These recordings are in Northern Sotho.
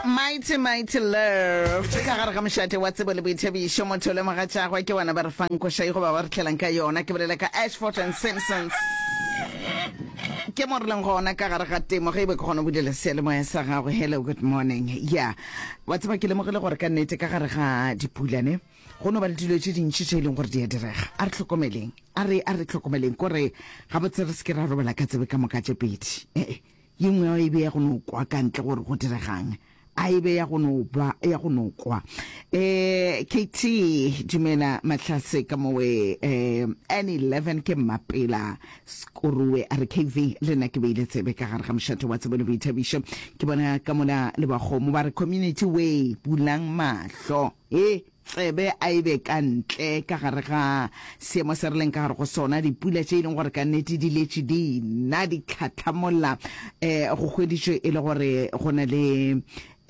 mighty mighty love ka gare ga mošate wa tsebo le boithabišo motho o lemoga tšagwe ke bona ba re fang košai goba ba re tlhelang ka yona ke bolela ka ashford and simpsons ke mo re leng gona ka gare ga temo ge e be ke kgona go bulela sealemoya sa gago hello good morning ya yeah. wa tseba ke lemogile gore ka nnete ka gare ga dipulane go no ba le dilo tse dintši tse e leng gore di a direga a re tlhokomeleng a re a re tlhokomeleng kore gabotse re se ke ra robala ka tsebe ka moka tse pedi ee Ye nngwe a e be ya go no kwa ka ntle gore go diregang. A e be ya go no ba ya go no kwa. Eh, KT, dumela Matlase ka mowe. Eh, N11 ke mmapela. Skoruwe a re KV, le nna ke beile tsebe ka gare ga mošate wa tsebo le boithabišo. Ke bona ka mola le bakgomo ba re community way, bulang mahlo. He! tsebe a e be ka ntle ka gare ga seemo se re leng ka gare go sona, dipula tše e leng gore ka nnete di letše di na di tlhatlhamolla um go hweditšwe e le gore go na le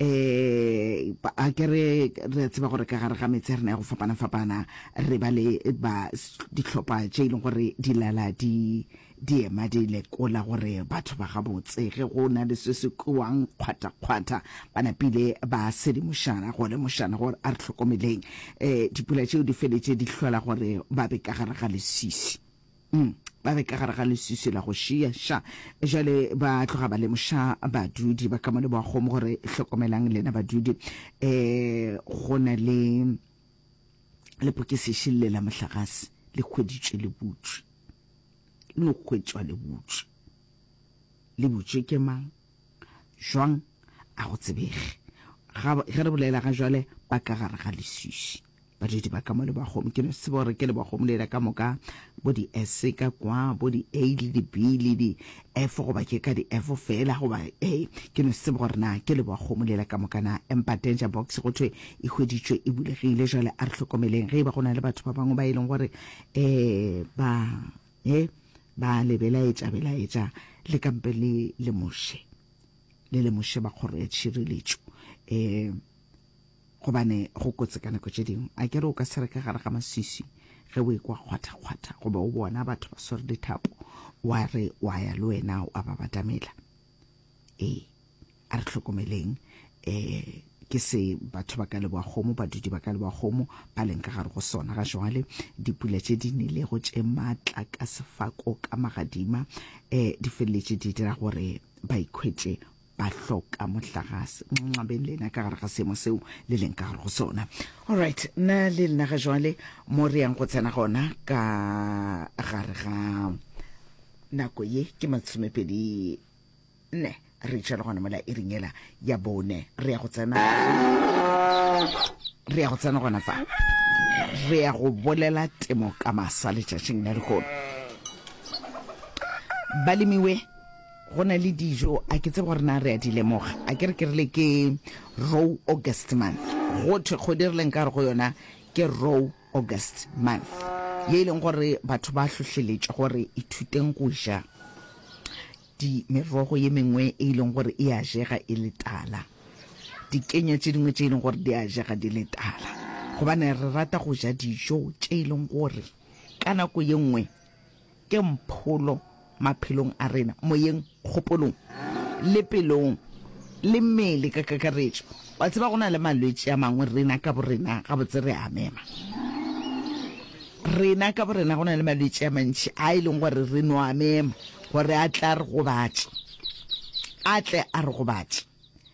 um a ke re re a tseba gore ka gare ga metse ya rena ya go fapana-fapana re ba le ba dihlopha tše e leng gore di lala di Diema di lekola gore batho ba gabotse ge go na le se se kwewang kgwathakgwatha ba napile ba sedimošana go lemošana gore a re hlokomeleng. Um dipula tšeo di feletše di hlola gore ba be ka gare ga lesisi. Um ba be ka gare ga lesisi la go šia ša. Jale ba tloga ba lemoša badudi ba ka mo leboagong gore hlokomelang lena badudi um go na le lepokesešing le la mohlagase le hweditšwe le butšwe. no hwetšwa le butše. Le butše ke mang? Jwang? A go tsebege. Ga, ge re bolela ga jwale, ba ka gare ga leswiswi. Badudi ba ka mo lebagong, ke no tseba gore ke lebagong lela ka moka, bo di-S ka kwa, bo di-A le di-B le di-F, goba ke ka di-F fela, goba A. Ke no tseba gore na ke lebagong lela ka moka na. Empa danger box go thwe e hweditšwe e bulegile. Jwale a re hlokomeleng, ge e ba go na le batho ba bangwe ba e leng gore E ba e ba le belaetša belaetša le kampe le le moše le le moše ba kgoro ya tšhireletšo e gobane go kotse ka nako tše dingwe a kere o ka se re ka gare ga maswiswi ge o ekwa kgwatha kgwatha goba o bona batho ba swere dithapo wa re wa ya le wena wa ba batamela ee a re tlhokomeleng um ke se batho ba ka leboagomo badudi ba ka leboagomo ba leng ka gare go sona ga jwale dipula tše di nilego tše maatla ka sefako ka magadima um di feleletše di dira gore ba ikhwetše ba hloka mohlagase nxabeng le ena ka gare ga seemo seo le leng ka gare go sona allright nna le lena ga jwale mo re yang go tsena gona ka gare ga Nako ye ke masomepedi nne. Re itšha le gona mola e ringela ya bone. Re ya go tsena. Re ya go tsena gona fa. Re ya go bolela temo ka masa letšatšing la lehono. Balemiwe go na le dijo a ke tsebe gore na re a di lemoga a ke re ke rile ke row august month go thwe kgodi re leng ka re go yona ke row August month, ye e leng gore batho ba hlohleletšwa gore ithuteng go ja di merogo ye mengwe e e leng gore e a jega e le tala, dikenya tše dingwe tše e leng gore di a jega di le tala, gobane re rata go ja dijo tše e leng gore ka nako ye nngwe Ke mpholo maphelong a rena, moyeng, kgopolong, le pelong, le mmele ka kakaretšo. Wa tseba, go na le malwetši a mangwe, rena ka borena gabotse re a mema. Rena ka borena go na le malwetši a mantši a e leng gore re no a mema gore a tle a re gobatše, a tle a re gobatše.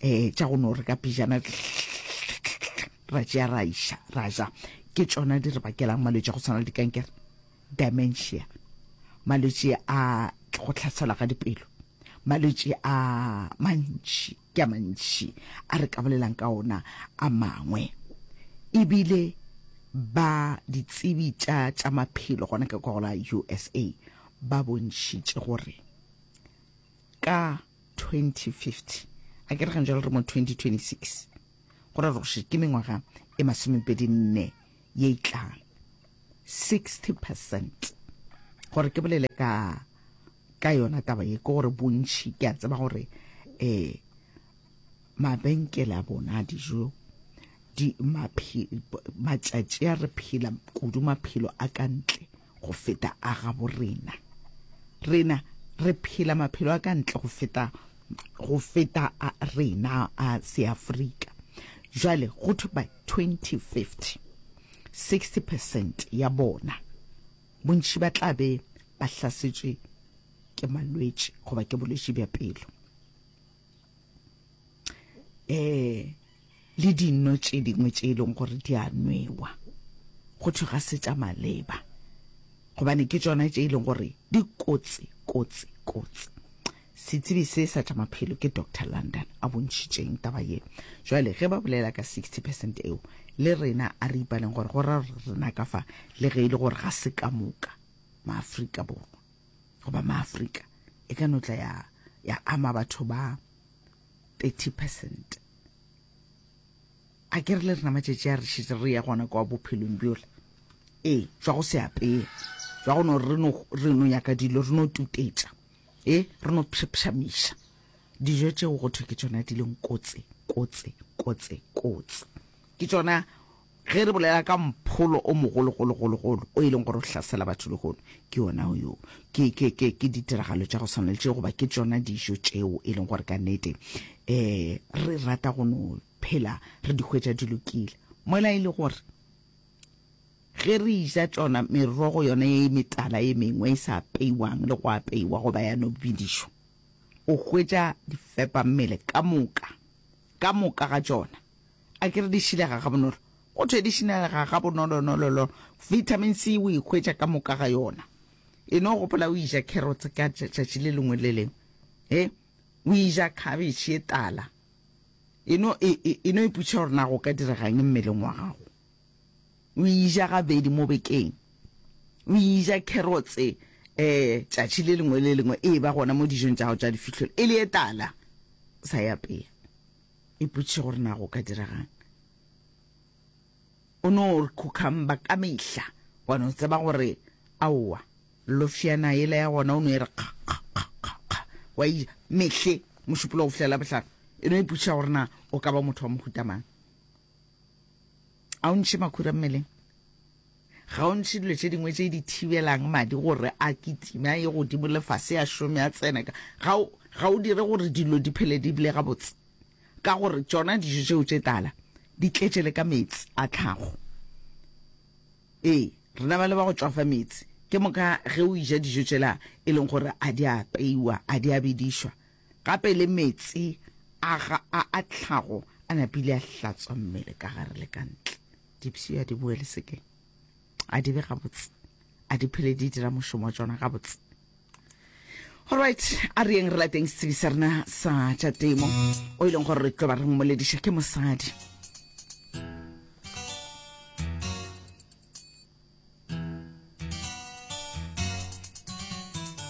um tša go no re ka pijana ra tšea ra iša ra ja ke tšona di re bakelang malwetse a go tshwana le dikankere dementia malwetse a go tlhaselwa ga dipelo malwetse a mantši ke a mantši a re ka bolelang ka ona a mangwe ebile ba ditsebi tša tša maphelo gona ka kwa gola usa ba bontšhitše gore ka 2050 a ke re gantšwa le re mo 2026 go ra gore ke mengwaga e masomepedi nne ye e tlang 60 percent gore ke bolele ka ka yona taba ye ke gore bontšhi ke a tseba gore um mabenkele a bona a dijo matšatši a re phela kudu maphelo a ka ntle go feta a gabo rena. Rena re phela maphelo a ka ntle go feta go feta a rena a Seafrika. Jwale go thwe by 2050 60% ya bona bontši ba tla be ba hlasetšwe ke malwetši goba ke bolwetši bja pelo. um le dino tše dingwe tše e leng gore di a nwewa go thwe ga se tša maleba gobane ke tsona tše e leng gore di kotsi kotsi kotsi setsebi se sa tša maphelo ke dr london a bontšhitšeng taba ye jale ge ba bolela ka 60 percent eo le rena a re ipaleng gore go ra rena ka fa le ge e le gore ga se ka moka maaforika borwa goba maaforika e ka notla ya ya ama batho ba 30 percent a ke re le rena matšatši a re šetse re ya gona kwa bophelong bjole ee jwa go se apeye jwa go no re no nyaka dilo re no tutetša ee re no phšapšamiša dijo tšeo go thwe ke tsona di leng kotse kotse kotse kotse ke tsona Ge re bolela ka mpholo o mogologologologolo o e leng gore o hlasela batho lehono, ke wona wo. Ke, ke, ke, ke ditiragalo tša go swana le tšeo, goba ke tšona dijo tšeo e leng gore ka nnete um re rata go no phela re di hwetša di lokile. Mola e le gore ge re eja tšona merogo yona ye metala ye mengwe e sa apeiwang le go apeiwa goba ya no bidišwa, o hwetša difepammele ka moka, ka moka ga tšona A ke re di šilega gabonolo? Go thwe di šilega gabonolonololo. Vitamin C o e hwetša ka moka ga yona. E no gopola o eja carrots ka tšatši le lengwe le lengwe. He, o eja cabbage e tala. E no, e, e, e no iputša gore na go ka diregang mmeleng wa gago. O eja gabedi mo bekeng. O eja carrots eh tšatši le lengwe le lengwe e ba gona mo dijong tša gago tša difihlolo. E le e tala. Sa e apeya. Ipotše gore na go ka diragang. O no re khukhamba ka mehla, wa no tseba gore aowa lofjana yela ya gona o no e re kga kga kga kga kga wa e ja mehle mošupolo go fihlela bohlano. E no ipotšiša gore na o ka ba motho wa mohuta mang. A o ntšhe makhura mmeleng? Ga o ntšhe dilo tše dingwe tše di thibelang madi gore a kitime a ye godimo le fase a šome a tsene ka? Ga o, ga o dire gore dilo di phele di bile gabotse? Ka gore tšona dijo tšeo tše tala di tletše le ka meetse a tlhago. Ee, rena ba le ba go tšwafa meetse. Ke moka ge o eja dijo tšela e leng gore a di a apeiwa, a di a bedišwa, Gape le meetse a ga a a tlhago a napile a hlatswa mmele ka gare le ka ntle. Dipshio a di boele sekeng. A di be gabotse. A di phele di dira mošomo wa tšona gabotse. Alright, a re yeng re lateng setsebi sa rena sa tša temo o e leng gore re tlo ba re mmolediša ke mosadi.